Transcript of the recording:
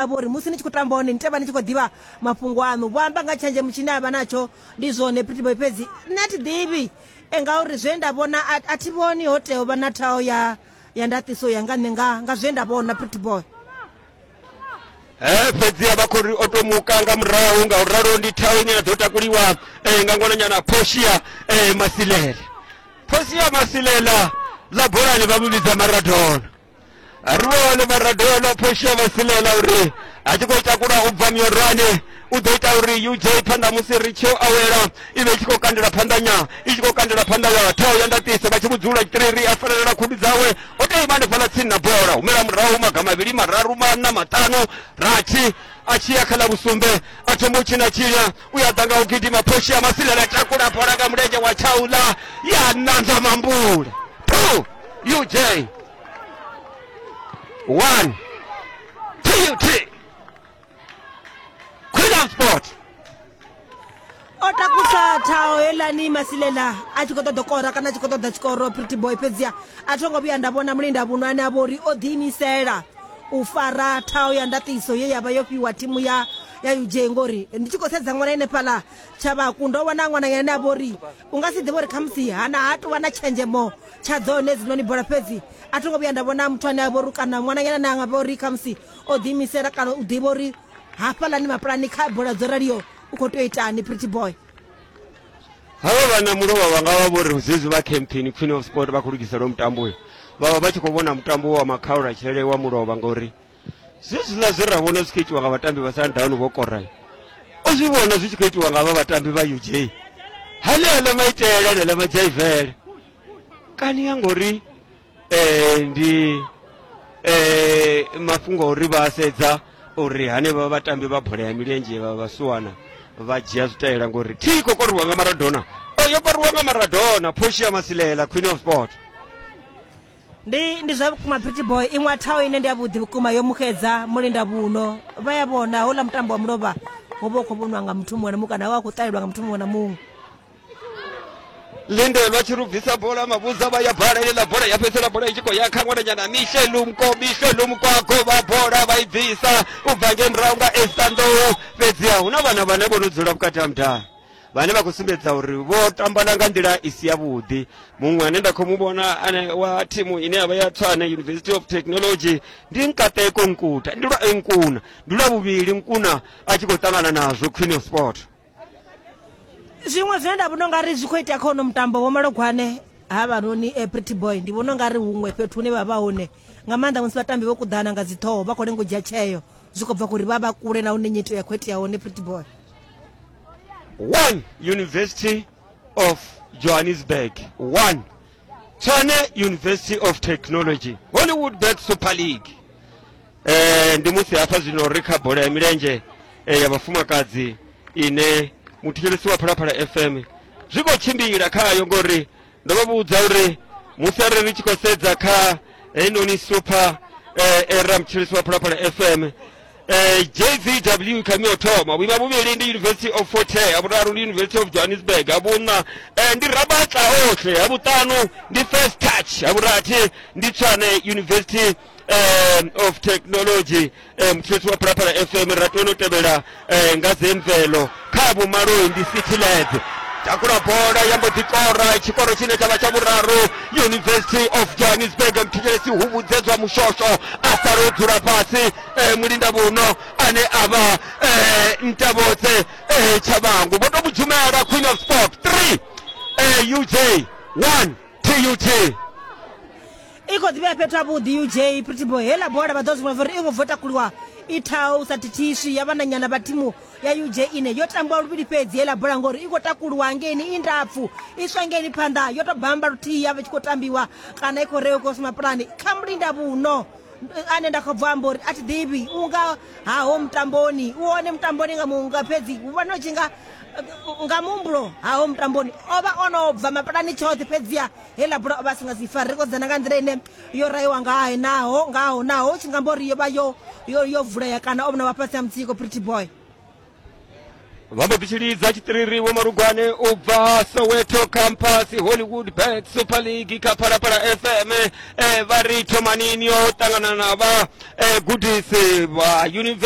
vha uri musi ni tshi khou tamba hone ni tea vha ni tshi khou ḓivha mafhungo aṋu vho amba nga tshenzhemo tshine a vha natsho ndi zwone pretty boy fhedzi nṋe a thi ḓivhi e ngauri zwe nda vhona a thi vhoni ho tea u vha na thaho ya ya ndaṱiso ya nga nṋe nga nga zwe nda vhona pretty boy Eh fhedziha vha khou ri o to muka nga murahu nga u ralo ndi thaho ine ya ḓo takuliwa eh, nga ngwananyana Portia eh, Masilela Portia Masilela ḽa bolani vha mu vhidza Maradona ruwale vharadela phosha vha silela uri a tshi khou ita kula u bva miorwane u ḓo ita uri uj phanḓa musi ri tshi awela i vhe i tshi khou kandela phanḓanya i tshi khou kandela phanḓa ya thao ya ndaṱiso vha tshi vhudzula tshitiriri a felelela khudu dzawe o tea ima hanefhaḽa tsini na bola humela murahu maga mavhili mararu maṋa maṱanu rathi a tshi ya kha ḽa vhusumbe a thoma u tshina tshinya u ya ḓa nga u gidima phoshia masila na takula bola nga mulenzhe wa tshaula ya nanza mambule two uj one tut queen sport o takusa thaho helani masilela a tshi khou ṱoḓa kora kana a tshi khou ṱoḓa tshikoro pretty boy fhedzia a tho ngo vhuya nda vhona mulinda vhuno ane a vho uri o ḓiimisela u fara thaho ya ndaṱiso ye ya vha yo fhiwa thimu ya ya uj ngori ndi tshi khou sedza ṅwana ene fhaḽa tshavhaku ndo vhona ṅwananyana ane a vha uri u nga si ḓivhe uri khamusi hana ha tou vha na tshenzhemo tsha dzone hedzinoni bola fhedzi a tho ngo vhuya nda vhona muthu ane a vha uri kana ṅwananyana ane a nga vha uri khamusi o ḓiimisela kana u ḓivha uri hafhaḽani mapulani kha bola dzo raliyo u khou tea u itani pretty boy havha vhana mulovha vha nga vha vho ri zwezwi vha campaign queen of sport vha khou lugisela mutambo uyo vha vha vha tshi khou vhona mutambo wa makhaula tshele wa mulovha ngori zwezwiḽa zwe ra vhona zwi khou itiwa nga vhatambi vha sundown vho koral o zwi vhona zwi tshi khou itiwa nga vha vhatambi vha uj haneaḽa maitele aneaḽa madzaivele kani ya ngori um ndi um mafhungo a uri vha sedza uri hanevha vhatambi vha bola ya milenzhe vha vhasuwana vha dzhia zwitaela ngori thi khou koriwa nga maradona o yo koriwa nga maradona phoshi ya masilela queen of sport ndi ndi zwa vhukuma pretty boy iṅwe thaho ine ndi ya vhuḓi vhukuma yo muxedza mulinda vhuno vha ya vhona houḽa mutambo wa mulovha wo vha u khou vhoniwa nga muthu muṅwe na muṅwe kana wa khou ṱalelwa nga muthu muṅwe na muṅwe lindelwa tshi lubvisa bola mavhudza vha ya bala iḽa bola ya fhedzisela bola i tshi khou ya kha ṅwananyana mishelumko mishelumko a gova bola vha i bvisa u bva nge murahu nga estanḓou fhedziha hu na vhana vhane vho no dzula vhukati ha mudala vhane vha khou sumbedza uri vho tambana nga nḓila i si yavhuḓi muṅwe ane nda khou mu vhona ane wa thimu ine ya vha ya tswane university of technology ndi nkateko nkuta ndi lwa nkuna ndi lwa vhuvhili nkuna a tshi khou ṱangana nazwo queen of sport zwiṅwe zwine nda vhona ungari zwi khou itea kha uno mutambo vho malogwane ha vhanoni eh, pretty boy ndi vhona ungari huṅwe fhethu hune vha vha hone nga maanḓa musi vhatambi vho kuḓana nga dziṱhoho vha khou lenga u dzhia tsheo zwi khou bva kuri vha vha kule na hune nyito ya khou itea hone pretty boy one university of johannesburg one tshwane university of technology hollywood bet super league eh, ndi musi hafha zwino ri kha bola ya milenzhe eh, ya vhafumakadzi ine muthetshelesi wa phalaphala fm zwi khou tshimbila khayo ngori ndo vha vhudza uri musi arali ni tshi khou sedza kha heinoni super eh, era mutshilisi wa phalaphala fm eh, jzw khami o thoma vhuima vhuvhili ndi university of fort hare ha vhuraru ndi university of johannesburg ha vhuṋa eh, ndi rabatla ohle ha vhuṱanu ndi first touch ha vhurathi ndi tshwane university um of technology um mutshetsi wa phalaphala fm ra tone u tevhela um nga zemvelo kha vhumaloi ndi citylands takula bola ya mbo ḓi kora tshikoro tshine tsha vha tsha vhuraru university of johannesburg mthetshelesi huvhudzedzwa mushosho a sala o dzula fhasi eh, mulinda vhuno ane a vha eh, ntavhotse eh, tshabangu vho to mudzhumela queen of sport 3 eh, uj 1 tut i khou ḓivhea fhethu havhuḓi uj pritibo hela bola vha ḓo zwi vhona uri i ngo bvo takuliwa i thaho u sa thithiswi ya vhananyana vha thimu ya uj ine yo tambiwa luvhili fhedzi hela bola ngori i khou takuliwa ngeini i ndapfu i swa ngeini phanḓa yo to bamba luthihi ya vha tshi khou tambiwa kana i khou rewa khou sima pulani kha mulinda vhuno ane nda khou bva amba uri a thi ḓivhi u nga haho mutamboni u one mutamboni nga munga fhedzi u vhona u tshi nga nga muhumbulo haho mutamboni o vha o no bva mapulani tshoṱhe fhedziha Heiḽa bola o vha a si nga si fare ri khou dzana nga nḓila ine yo raiwa ngahe naho ngaho naho tshi nga mbo ri yo vha yo yo yo vulea kana o vhona vha fhasi ha mutsiko pretty boy vha mbo ḓi tshi lidza tshiṱiriri vho marugwane u bva soweto campus hollywood bet super league kha phalaphala fm eh, vha ri thomanini yo ṱangana na vha eh, gudisi vha university